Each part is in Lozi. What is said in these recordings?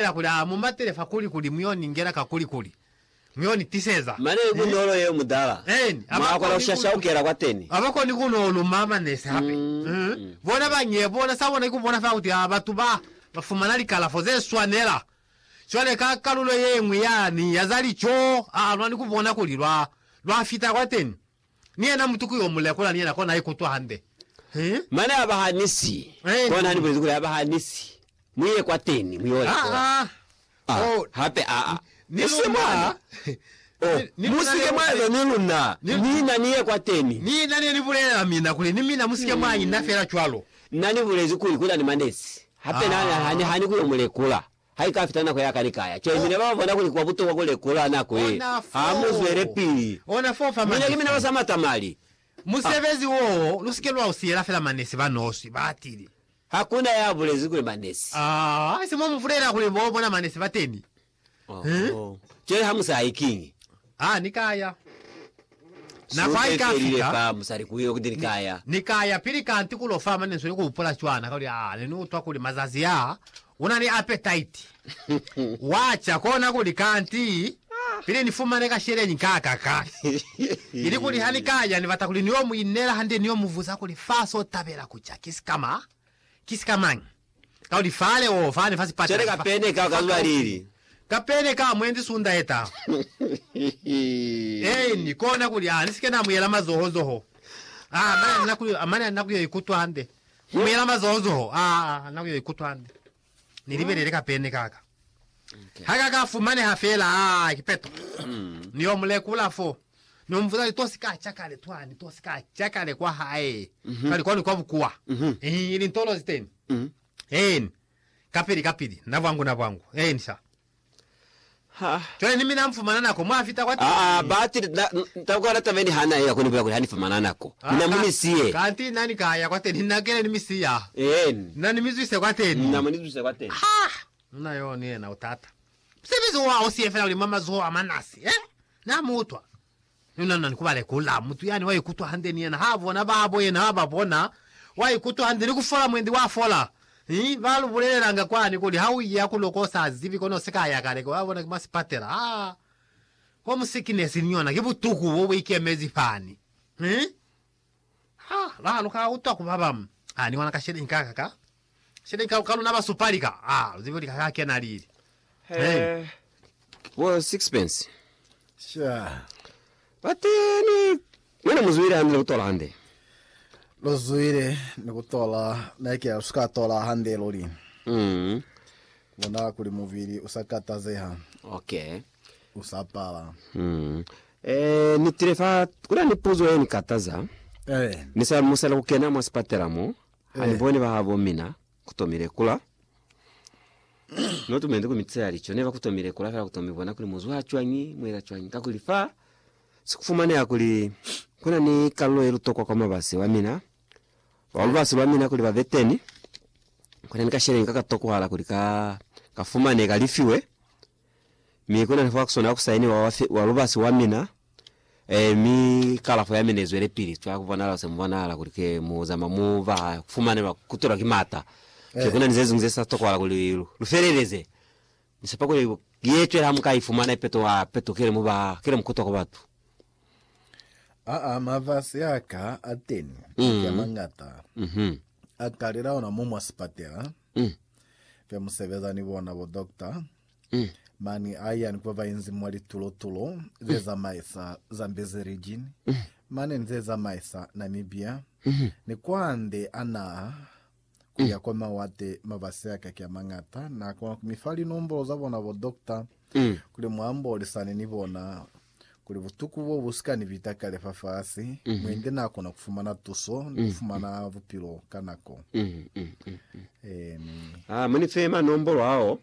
Yela kuli a mu matele fa kuli, kuli mu yo ni ngela ka kuli, kuli mu yo ni tiseza. Mane ku nolo yeo mutala, Eeni, mwa kona ku shashaukela kwateni. Aba koni ku no luma manese hape. Bona ba ñe, bona sa bona ki ku bona fela kuti a batu ba, ba fumana likalafo ze swanela. Cwale ka kalulo ye ñwi yani ya za lico, a, lwa ni ku bona kuli lwa, lwa fita kwateni. Ni yena mutu ku yo mu lekola ni yena kona a ikutwa hande. He. Mane a ba hanisi. Amen. Kona Ni bulezi kuli a ba hanisi. Mu ye kwateni, mu yo lekola. Aa. A. Oh. Hape a. A. Ni Esi luna. mwa. Oh, Ni mu luna si ke mwa leuze. eza ni luna. Ni. Mina ni ye kwateni. Ni na ne ni bulelela mina kuli, Ni mina mu si ke mwa ina fela cwalo. Na ni bulezi kuli kuna ni manezi. Hape na, na, Aa. na ni hani ku yo mu lekola. haikafita nako ya kanikaya. Cwale mina babona kuli kuba butokwa kulekola nako ye ha mu zwelepili. Mina ki mina basama tamali. Musebezi wo lusike lwa usiyela fela manesi ba noswi, batili. Hakuna ya bulezi kuli manesi. Aa, se mwa mubulela kuli bo bona manesi bateni. Oho. Cwale ha musa hayi kiñi? Ha ni ka ya. Nako ha i ka fika, ni, ni ka ya pili kanti ku lo fa maneso ni ku hupula cwana, kuli, Aa, ne ni utwa kuli mazazi a, u na ni apetaiti. Wa ca kona kuli, Kanti, pili ni fumane ka sheleñi kakaka. Ili kuli ha ni ka ya, ni bata kuli ni yo mu inela hande, ni yo mu buza kuli, Fa so tabela ku ca, ki sikama, ki sikamañi? Kauli fale o fani fa sipata. Cwale ka pene ka ka zuba lili. Ka pene ka mwendi sunda ye ta. Eeni, kona kuli a ni sike na muyela mazoho zoho. A, mane a ni na ku, mane a ni na ku yo ikutwa hande. Ku muyela mazoho zoho, a, a ni na ku yo ikutwa hande. Ni libelele ka pene ka ka. Ha ka ka fumaneha fela, a, kipeto. Ni yo mu lekula foo. No mbuza kuli, To si ka ca kale twani? To si ka ca kale kwa hae kale kwani kwa bukuwa? Eeni, ili ntolo zi teni. Eeni, kapili kapili, na bwangu na bwangu. Eeni, sha. Cwale ni mina mufumana nako, mwa fita kwa teni. Aa, batili, na, na kwa lata meni ha na eya ko, ni bulela kuli, Ha ni fumana nako. Mina mu ni siye. Kanti na ni ka ya kwa teni, na kile ni mi siya. Eeni. Na ni mi zwise kwa teni. Na mu ni zwise kwa teni. Ha! Muna yo ni yena u tata. Musebezi wa u siye fela uli mwa mazoho a manasi, eh? Na mu utwa. Ni unanna ni ku ba lekula. Mutu yani wa ikutwa hande ni yena ha bona babo yena ha ba bona. Wa ikutwa hande ni ku fola mwendi wa fola. Hi, ba lu bulelelanga kwani kuli ha u iya ku loko u sa zibi kono u si ka ya kale, wa bona, ki mwa sipatela. Ha! Home sickness ni yona ki butuku bo bu ikemezi fani. Hi! Ha ba lu ka utwa ku ba ba a ni wana ka sheleñi ka ka ka sheleñi ka, ka luna ba supali ka a lu zibi kuli ka ka kena lili. Hey. Bo sixpence. Sure. But ni mwana muzwile hande ni kutola hande. Lo zwile ni kutola neke lu suka tola hande luli. Mm. Bona kuli muvili usakatazeha. Okay. u sa pala. Mm. Eh, ni tile fa kuna ni puzo ye ni kataza. Eh. Ni sa musela ku kena mwa sipatela mo. Ha ni eh. bone ba habo mina ku tomile kula. no tumende ku mitse ya licho ne ba ku tomile kula fela ku tomi bona kuli muzwa ha chwangi mwela chwangi ka kuli fa si kufumane ya kuli kuna ni kallo ye lutokwa kwa mabasi wa mina wa eh. lubasi lwa mina kuli ba veteni kuna ni ka sheleni ka ka tokuhala kuli ka ka fumane ka lifiwe Mi kuna ni fwakisona ku sainiwa wa, wa lubasi wa mina, eh, mi kalafo ya mina izwelepili cwa kubonahala kuse mubonahala kuli ke mu zama mu ba kufumanelwa kutwelwa ki mata. Ki kuna ni zeziñwi ze sa tokohala kuli lu feleleze. Ni sepa kuli ye cwela ha mu ka ifumana ipeto ha peto kile mu ba, kile mu kutwa kwa batu. Aa, mafasi aka ateni, maki amañata, a talela ona mo mwa sipatela. Mm. Fe musebeza ni bona bo doctor. Mm. Mani a yani kwa bainzi mwa litulo tulo ze zamaisa Zambezi region. Mm. Mane ni ze zamaisa Namibia. Mm. Ni kwande a naha ku ya kwa mawate mabasi a kaki a mangata. Na kona ku mi fa linombolo za bona bo doctor. Mm. Kuli mwa mbolisane ni bona. Kuli butuku bo bu si ka ni bita kale fafasi, mwendi n'a kona ku fumana tuso ni ku fumana bupilo ka nako. Amen. Ah, mu ni fe manombolo ao.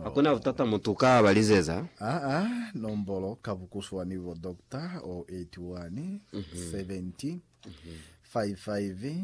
Ha ku na butata mutu ka ba lizeza. Aa, nombolo ka bukuswani bo, Doctor, 081 70 55